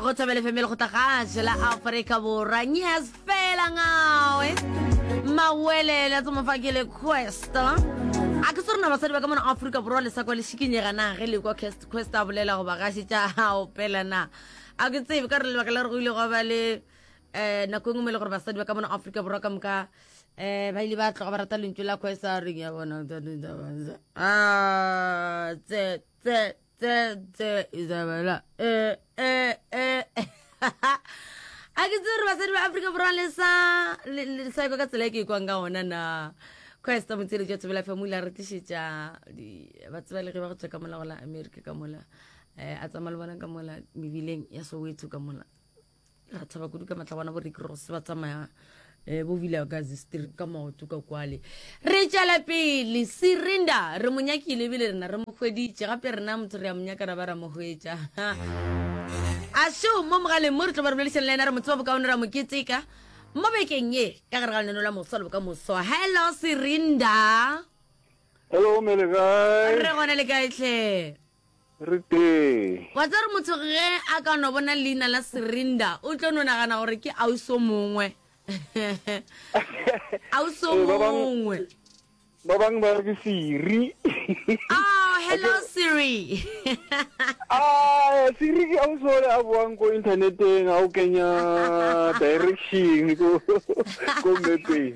go tshabele femele go tagase la aforika borwa nyas fela ngawe mawelele tse mofakele questa a ke sorena basadi ba ka mona aforika borwa le sa kwa le šikinyega na ge le kwa questa a bolela goba gase tša gao pela na a ke tsebe ka re lebaka la re go ile go ba le um nako e ngwe mo e le gore basadi ba ka mona aforika borwa ka moka um ba ile ba tloga ba rata lentšu la questa reng ya bona tse tse tse izabela e e e a ke tsere basadi ba afrika borwa le sa le sa ka tsela e ke ikwang ka ona na Christ motsele jwa tsebela fa mula re tlišetša ba tseba le ge ba go tswa ka mola go la America ka mola eh a tsamaya le bona ka mola mebileng ya Soweto ka mola ra tshaba kudu ka matlabana bo rick rose ba tsamaya um bo vile gazi street ka maoto ka kwale re tšala pele sirinda re mo nyakile ebile rena re mo hweditše gape rena motho re ya monyaka ra ba ra mo hwetša a seo mo mogaleng mo re tlo ba re boledišana le ena re mo tseba bokaone ra mo keteka mo bekeng ye ka gare ga leneno la moso le boka moso hello sirinda hello mele kae re gona le kaetlhe Re tee. Wa tseba gore motho ge a ka no bona leina la Serinda, o tlo no nagana gore ke ausi o mongwe. Ausi o Ee, ba bang- mongwe. Ba bang ba re ke Siri. Oh, hello Siri. Ah, Siri ke ausi ole a boang ko inthaneteng a o kenya direction ko ko mepeng.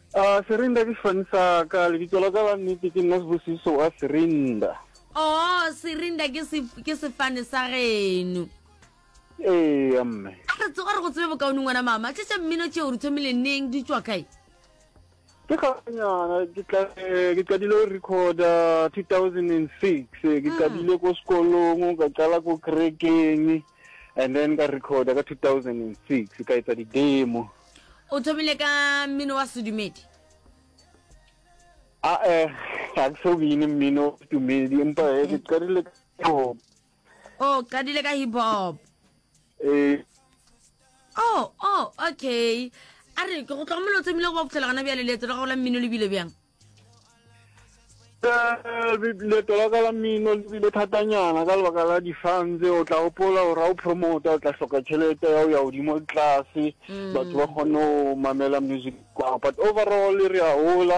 A Serinda ke sefane sa ka. Lebitso la ka la nnete ke nna Sibusiso wa Serinda. Oh, Serinda ke, se, ke sefane sa geno. Eya, mme. A re tsoga re go tsebe bokaone ngwana mama. Tše tša mmino tšeo re thomile neng di tšwa kae? Ke ganyana ke tla eh, ke qadile go recorda 2006 eh, ke mm. qadile ko sekolong ka qala ko kerekeng and then ka recorda ka 2006 ka etsa di-demo o thomile ka mmino wa sedumedi a e ga ke so bine mmino sedumedi empa e eh, ke qadile ka hip hop o oh, qadile ka hip hop ee oh oh okay a re ke go tlhokomelo o thomile go ba phutlhela gana bjale leetso la gago la mmino le bile bjang leto la ka la mmino le bile thatanyana ka lebaka la difang tse o tla gopola gore ga o promota o tla hloka tšhelete ya o ya godimo le tlase mm. batho ba kgone go mamela music kwao but overall re a gola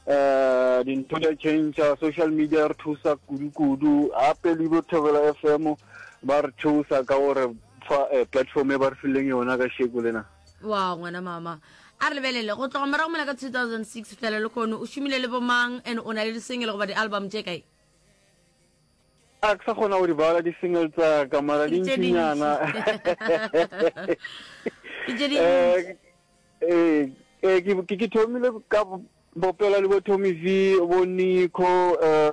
um eh, dintho di a change social media re thusa kudu-kudu gape le bo thobela f m ba re thusa ka gore fa eh, platform e ba re fileng yona ka sheko lena wa ngwana mama a re lebelele go tloga morago mola ka 2006 fihlela le kone o šomile le bomang and o na le disengele goba di-album tše kae a ke sa kgona go di bala di-single tsa ka mara di ntšinyana ke thomile ka bopela le bo tommy v bo nico um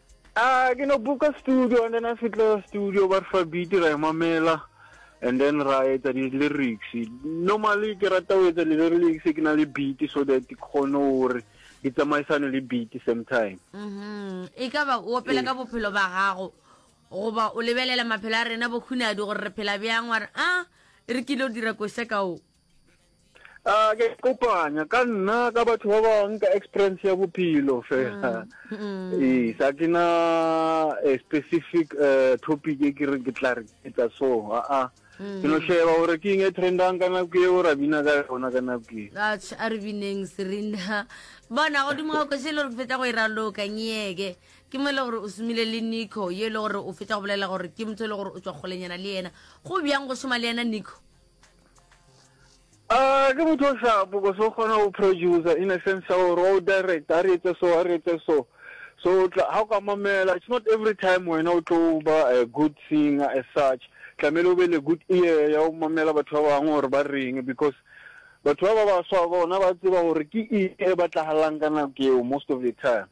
Ah, ke no boka studio and then a fitla studio ba re fa beat ra e mamela and then ra etsa di-lyrics normally ke rata go etsa di-lyrics ke na le beat so that ke kgone gore di tsamaisane le beat same time mm-hmm. e ka ba o opela ka bophelo ba gago goba o lebelela maphelo a rena bokhunadi gore re phela bjang wa re a ah, re kile o dira koša ka o a ah, ke kopanya ka nna ka batho ba bangwe ka experience ya bophelo fela mm, mm. ee sa ke na a specific eh, topic e ke re ke tla re etsa so aa ah, ah. mm. ke no sheba gore ke eng e trendang ka nako eo ra bina ka yona ka nako e a re bineng serena bona godimo ga kwešhe e le gore ke fetsa go e raloka nyeke ke mo e le gore o somile le nico ye e le gore o fetsa go bolela gore ke motho e le gore o tswa kgolenyana le yena go bjang go šoma le yena nico Ah, ke motho o shapo ko so kgona go producer in a sense ya gore wa o director a re etse so a re etse so so ga o ka mamela it's not every time wena o tlo ba a good singer as such tlamehile o be le good ear ya go mamela batho ba bangwe gore ba reng because batho ba ba baswa bona ba tseba gore ke eng e batlagalang ka nako eo most of the time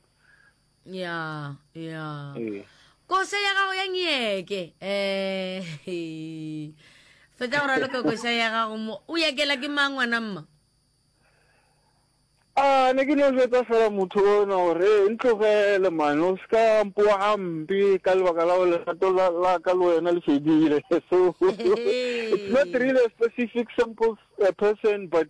ya ya ee. kose ya gago ya nyeke um fetsa go raloka kosa ya gago mo o yakela ke mang ngwana mma a ah, ne ke no jetsa fela motho ona gore e ntlogele mane o seka mpoa gampe ka lebaka la lerato la ka le wena le fedile so it's not really a specific simple uh, person but